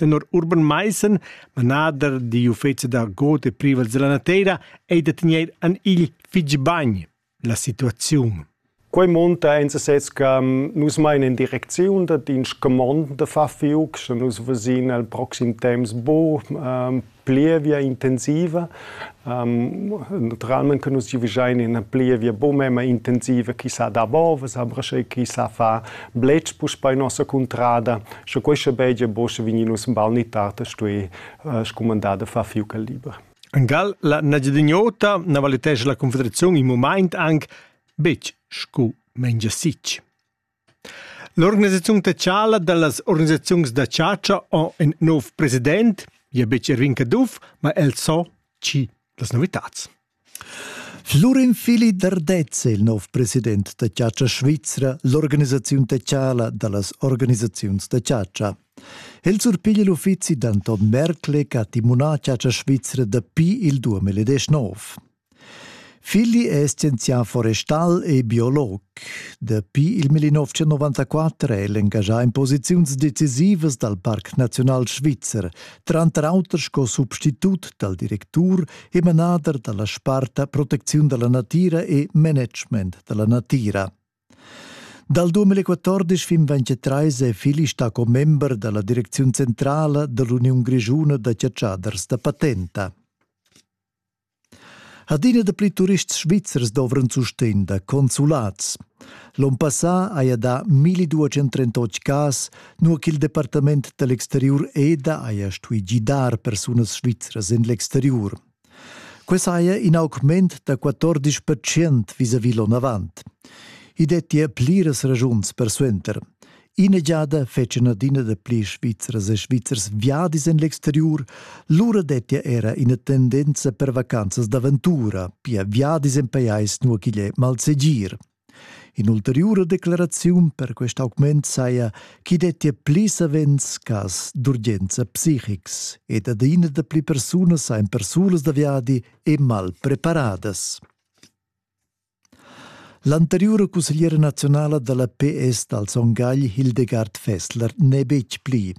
Tenor Urban Maissen, manader digl uffeci d'argot e privels dalla nateira, ei da tegner an igl fitg bagn la situaziun. Quei monta en sesez che nus meinen in direcziun dat in scumond da far fiuc, sche nus vesin el proxim temps bu um, plievia intensiva. Um, naturalment che nus giuvischain ina plievia bu memma intensiva chi sa da bovas, aber sche chi sa fa blech puspei nossa cuntrada, sche questa begia bosche vignus un bal ni tard stui uh, scumandar da far fiuca liber. En Gal la Nagedignota na valitesce la Confederazione in moment anche betg scu mengia sitg. L'organisaziun tetschala dallas organisaziuns da chatscha ha in nov president, gia betg Erwin Caduff, ma el sa tgi las novitads. Flurin Fili Dardez è il nov president da chatscha svizra, l'organisaziun tetschala dallas organisaziuns da chatscha. El surpiglia l'uffizi d'Anton Merkle che ha timunà chatscha svizra dapi il 2019. Figli è scienzià forestal e biolog. Dapi il 1994 è el engaschà in posiziuns decisivas dal Parc Naziunal Svizzer, tranter auter sco substitut dal directur e manader da la sparta Protecziun da la natira e Management da la natira. Dal 2014 fin 2023 è Fili stato member della direzione centrale dell'Union Grigiuna da Ciatschaders da Patenta. Adina dapli turists svizzers dovran sustegn da consulats. L'onn passà haja dà 1238 cas, nua ch'il departament da l'exteriur EDA haja stuì gidar persunas svizras en l'exteriur. Quai saja in augment da 14 percent vis-à-vis l'onn avant. I dettia pliras ragiuns persuenter. Ina giada fetschan adina da pli Svizzers e Svizzers viadis en l'exteriur, lura dettia era ina tendenza per vacanzas d'aventura, pia viadis en pajais nua ch'igl è malsegir. In'ulteriura declaraziun per quest augment saja ch'i dettia pli savens cas d'urgenza psichics ed adina da pli persunas ein persulas da viadi e mal preparadas. L'anteriura cussegliera naziunala dalla PS dal Son Gagl Hildegard Fessler n'è betg pli,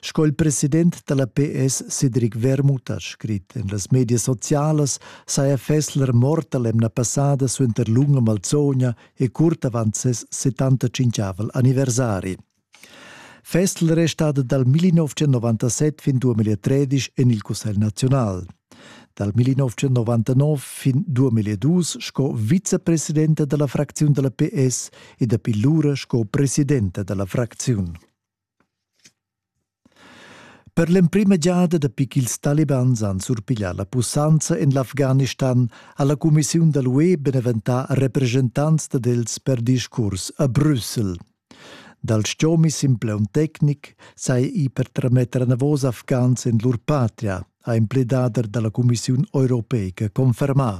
sco il president dalla PS Cedric Wermuth ha scrit en las medias socialas, saja Fessler morta l'emna passada suenter lunga malzogna e curt avant ses 75 anniversari. Festel restada dal 1997 fin 2013 en il Cussegl naziunal. Dal 1999 fin 2002 sco vicepresidenta dalla fracziun dalla PS e dapi lura sco presidenta dalla fracziun. Per l'emprima giada dapi ch'ils talibans han surpiglià la pussanza en l'Afghanistan ha la cumissiun da l'UE beneventà represchentants dad els per discurs a Brüssel. Dal stgomi simpleun tecnic sai i per trametter anavos afghans en lur patria, ha empledader da la cumissiun europeica confermà.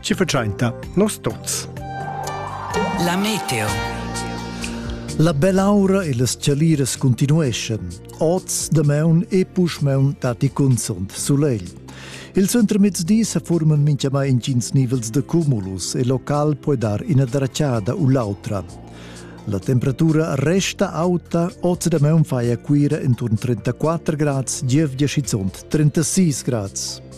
ci faciainta nos tots. La meteo. La belaura e las chaliras continueschan. Oz, damaun e puschmaun datti cunzont sulegl. Il centremezdi se forman minchiamai intgins nivels de cumulus e local può dar ina dracciada u l'autra. La temperatura resta auta, oz da meun fai a Cuira intorno 34 gradi, Gievgia schizont 36 gradi.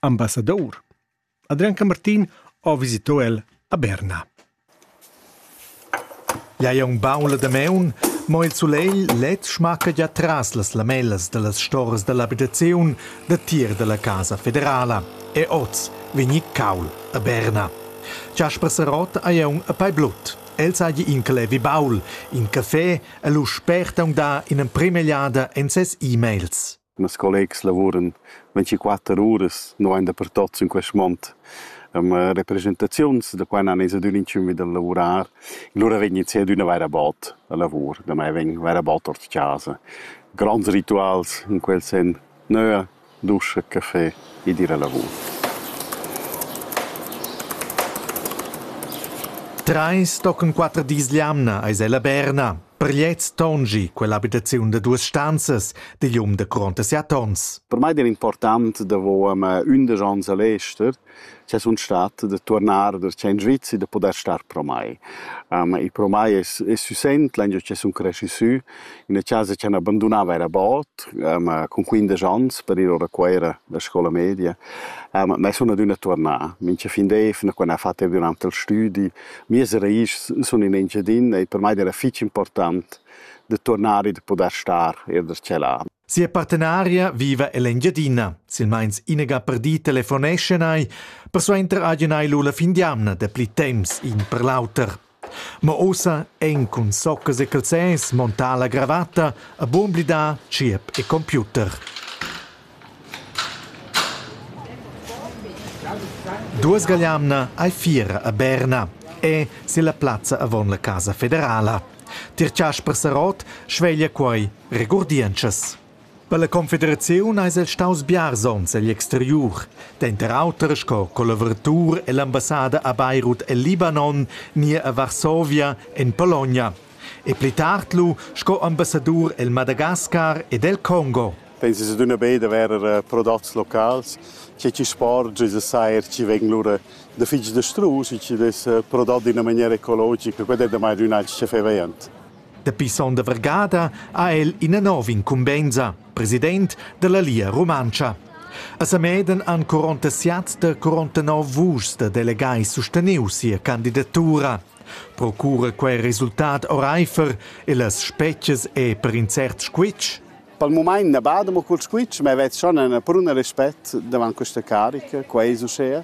Ambassadour. Adrian Camartin ho visito el a Berna. Ja è un baun la dameun, mo il sulegl led schmacca già tras las lamellas dallas storas dall'abitaziun da tir dalla Casa Federala e oz vegni caul a Berna. Jasper Sarot haja un a pai blut. El sagli in clevi baul, in café e lu sperta un da in emprema egliada en ses e-mails. Mes collegs lavuran vintiquatter uras nulein dapertut sin quest mond. Ehm represchentaziuns da qua n'han ins adüna inchün vi da lavurar. Lura vegn ins adüna vaira bod a lavur, da mai vegn vaira bod ord chasa. Gronds rituals in quel sen, nöa, duscha, café ed ir a lavur. Treis tochen quatter dis l'jamna eis ella Berna. Per gliez tongi quella abitaziun da duas stanzas digl um da gronda siat onns. Per mei era important davo um, undisch onns a l'ester che sun stat da tuornar da in Svizi da poder star pro mai. Um, e pro mai è, è süsent lange che sun cresci sü in una casa che abbandonava era bot um, con 15 anni per ir ora Cuera da scuola media. Um, ma sun adüna tuornà. Minche fin d'efna quando ha fatto un antal studi Mias ragischs sun in Engiadin e per mai era fich important da turnar e da pudair star eir da tschelà. Sia partenaria viva ell'Engiadina. Silmeins inega perdì telefoneschan ei, persuenter hagen ei lu la fin d'jamna dapli temps in per l'auter. Ma ossa ein cun soccas e calzers montà la gravatta a buon blidar tgierp e computer. Duosgagliamna ei fiera a Berna e silla plazza avon la Casa federala. Tier Chasper Sarott sveglia quei regurdientschas. Per la confederaziun eis el staus biars onns egl exteriur, denter auter sco collaboratur ell'ambassada a Beirut el Libanon ni a Varsovia en Pologna e pli tard lu sco ambassadur el Madagascar ed el Congo. Pensas adüna be da verer prodots locals, che chi sporgia e sair chi vegn lura da fich dastrus e chi dess prodot d'üna maniera ecologica, quai è damai ün alch chefevaint. Dapi son da vargada ha el ina nova incumbensa, president dalla Lia Rumantscha. A Sameden han 47 da 49 vuschs da delegai susteniu sia candidatura. Procura quei resultat oreifer e las spetgas e per in cert squitsch? Pel mumaint na bada mo cul squitsch, ma vet schon üna pruna respet davant questa carica, qua es uschea.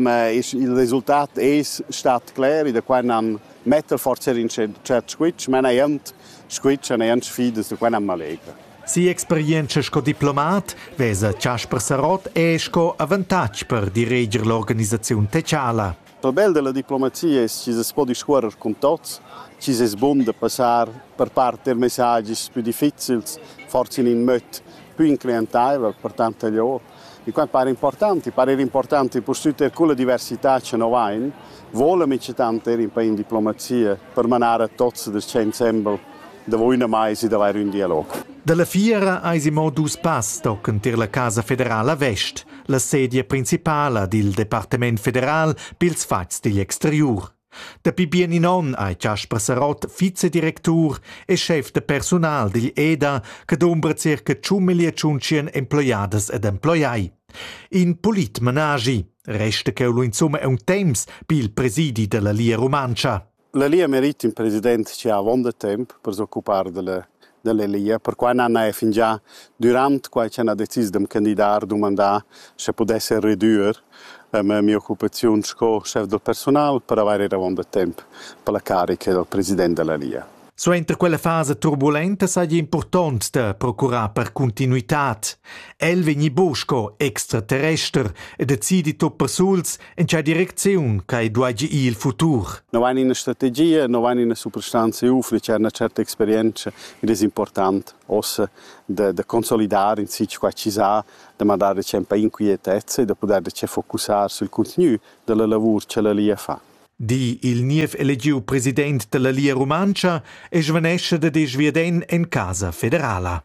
Ma il resultat es stat cler e da qua nan metter forsa in tschert squitsch, ma neir squitsch e neir sfidas, da qua nan m'allegra. Si'experientscha sco diplomat vesa Chasper Sarott er sco avantatg per direger l'organisaziun teciala. Pabel della diplomazia es chi's es po discuorrer cun tots, chi's es bun da passar per part eir messagis pü difficils, forsa in ün möd pü incliantaivel per tante lio. I quant para important, i para eir important pustüt eir culla diversità cha no vain, voula minchatant eir in pa in diplomazia per manar a tots da sta insembel Davo üna maisa d'avair ün dialog. Da la fiera aisi mo dus pass tochen tier la Casa federala Vest, la sedia principala dil Departement federal pils fatgs digl exteriur. Dapi bien in onn ei Casper Sarott vicedirectur e chef de personal digl EDA che dumbra circa 100.100 emploiadas ed emploiai. In polit managi, resta cheu lu insumma un temps pil presidi della Lia Rumantscha. La Lia merit ün president chi ha avonda temp per s'occupar da la da la Lia, perquai n'hana eir fingià dürant quai ch'hana decis d'am candidar dumandà sche pudesser redüer ma mi'occupaziun sco schef da persunal per avair eir avonda temp per la carica dal president da la Lia. Suenter quella fasa turbulenta saja impurtont da procurar per cuntinuitad. El vegni bu sco extraterrester e decidi tuot persuls En tgei direcziun che duagi ir il futur? No ein ina strategia, no ein ina superstanza UFNE, c'è una certa esperienza ed è importante ossa da, da consolidare in sitio qua ci sa, da mandare c'è un po' inquietezza e da poter focusare sul continuo della lavoro che la Lia fa. Di il niev elegiu president della Lia Rumantscha e svanesce da desch viaden en casa federala.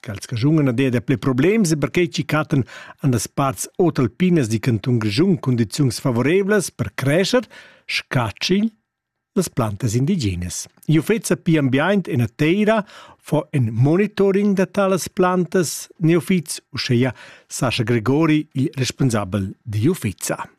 Ch'els raschungan ad ella pli problems e perquei chi cattan an las parts otalpinas di cantun Grischun cundiziuns favoreivlas per crescher, scatschigl las plantas indigenas. I uffeца pi ambiaint e nateira fo en monitoring da talas plantas neofits, uscheia Sascha Gregori, il responsabel di uffeza.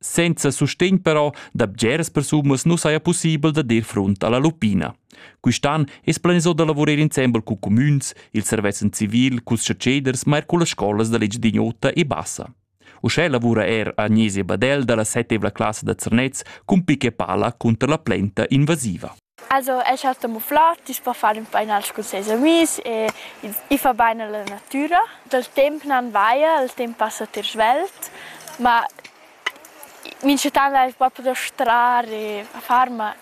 Senza sustegn però da bgeras persunas nu saja pussibel da dir frunt a la Lupina. Quist'an es planisà da lavurer insembel cun cumüns, il servezzan civil, culs chatscheders, ma eir cullas scolas da l'Engiadin'Ota e Bassa. Uschè lavura er Agnese Badel da la settevla classa da Zernez cun pic e pala cunter la plenta invasiva. Also el cha sta mufflà ti's po far ün painage cun seis amis e i fa bain a la natüra. Dal temp nan vaia, il temp passa ter svelt, ma minchatant l'ais propi da strar e a far, ma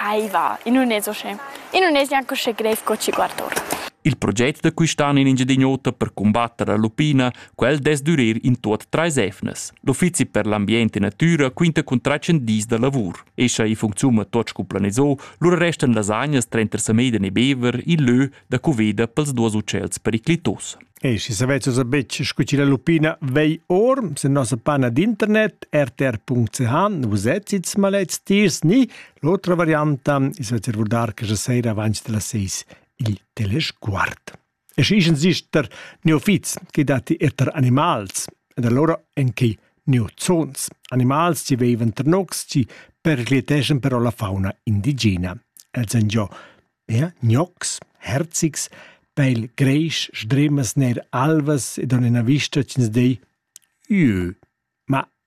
ai va, i nun es uschè. I nun es gnanc uschè greiv co chi guarda ora. Il proget da quistan in Engiadin'Ota per cumbatter l'alpina, quel dess dürer in tuot trais evnas. L'uffizi per l'ambient e natüra quinta cun trais dis da lavur. E scha i funcziuna tot scu planiso, lura restan las agnas trenter Sameiden e Bever il lö da cuveda pels duos utschels periclitos. E si savezos a betg scu ci la lupina vei or, se nossa pana d'internet rtr.ch vus etzits malets tiers ni l'otra varianta is vecer vurdar che sera avanti della 6 il telesguard. E schi ischens gist der neofits che datti er tar animals, ed allora en quei neozons, animals chi veivan tar nocs chi pericliteschan però la fauna indigena. Els han giò ja, gnocs, herzigs, pel greisch, sdremas ner alvas ed on ina vista ch'ins dei «Jö». Ma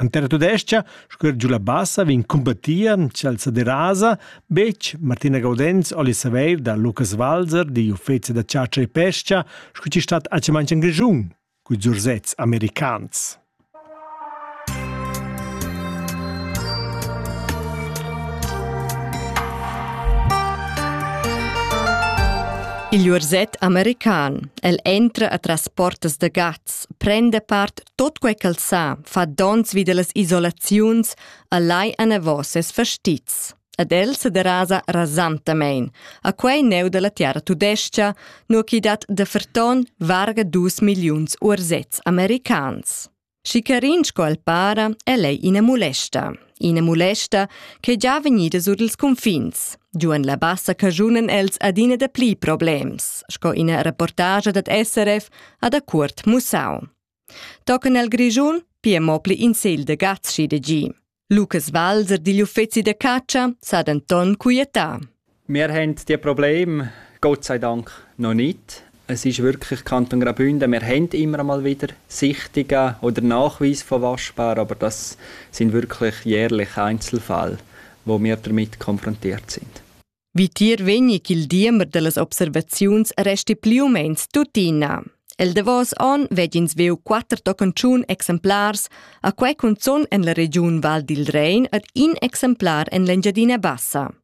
En terra tudestga, scuer giu la bassa, vegn cumbattia Chelsea derasa, betg Martina Gaudenz oli saveir da Lukas Walser di uffece da ciacia e pescia, scu ci stat a cimanci en Grigiun, cu zurzets americans. Il urzet american, el entra atras portas de gats, prende part tot quei ch'el sa, fa dons vi dellas isolaziuns, a lai anavos ses fastizs. Ed el se derasa rasantamein, a quei neu della terra tudescia, nur chi dat de ferton varga dus milliuns ursets americans. Schicarin sco el para, el ei ina mulesta. ina mulesta ch'è già vegnida sur ils cunfins. Giuan la bassa cagiunan els adina da pli problems, sco ina reportagia dad SRF ha da cuort mussau. Tocan el Grischun pia mo pli in segl de gazzi de gi. Lucas Walser digl uffeci de caccia sa denton quietà. Wir haben die Probleme, Gott sei Dank, noch nicht. Es ist wirklich Kanton Graubünden. Wir haben immer mal wieder Sichtungen oder Nachweise von Waschbaren, aber das sind wirklich jährlich Einzelfälle, wo wir damit konfrontiert sind. Wie dir wenig il diemer dellas Observationsreste più mens tuttina. El davos on vegin sveu quatter tocanciun exemplars, a quei cunzun en la regiun Val dil Rein ed in exemplar en l'Engiadina Bassa.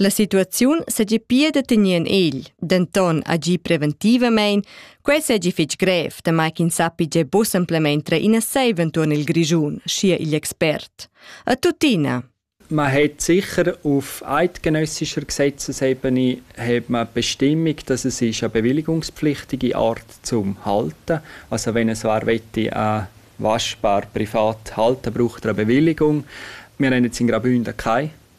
La situaziun segi pia da tener en egl, denton agir preventivamein, quei segi fetg grev, damai ch'ins sappi gia buca semplamein trer ina seiva entuorn il Grischun, schia igl expert. A tuttina, Man hat sicher auf eidgenössischer Gesetzesebene hat man Bestimmung, dass es ist eine bewilligungspflichtige Art zum Halten. Also wenn so möchte, eine waschbar privat halten, braucht er eine Bewilligung. Wir haben jetzt in Graubünden keine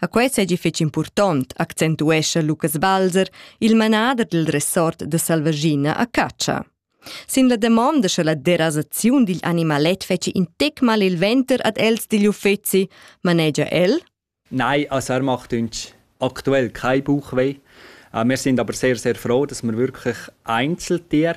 A quei seigi fetg impurtont, accentuescha Lucas Balzer, il manader dil resort da Salvaschina a catscha. Sin la damonda sche la derasaziun digl animalet fetschi in tec mal il venter ad els digl uffeci, manegia el. Nein, also er macht uns aktuell kein Bauchweh. Äh, wir sind aber sehr, sehr froh, dass wir wirklich Einzeltiere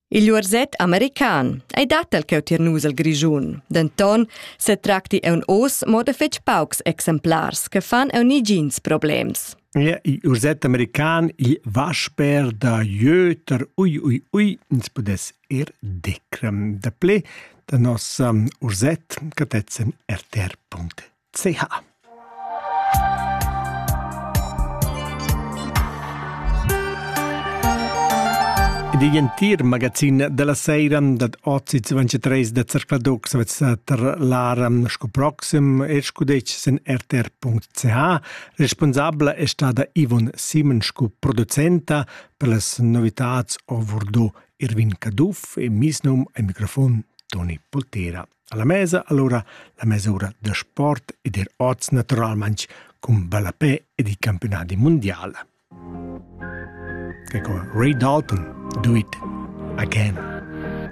Il uorset american ei dat el cheu tier nus el Grischun. Denton setracti aunc oz mo da fetg paucs exemplars che fan aunc negins problems. Ja, il urset american, il vasper da Jöter, ui, ui, ui, ins pudess ir decrem. Da ple da nos um, urset catezzen rtr.it. ch. Digl entir magazin dalla seira dad oz 23 da Zercladoc sa tar l'ara sco proxim er sco dec sen rtr.ch. Responsabla è stada Ivon Simon sco producenta per las novitats ovurdo Irvin Caduff e misnum ai microfon Toni Poltera. alla mesa allura la mesura da sport ed er oz naturalmaing cun ballapè ed i campionati mundial. Che con Ray Dalton Do It Again.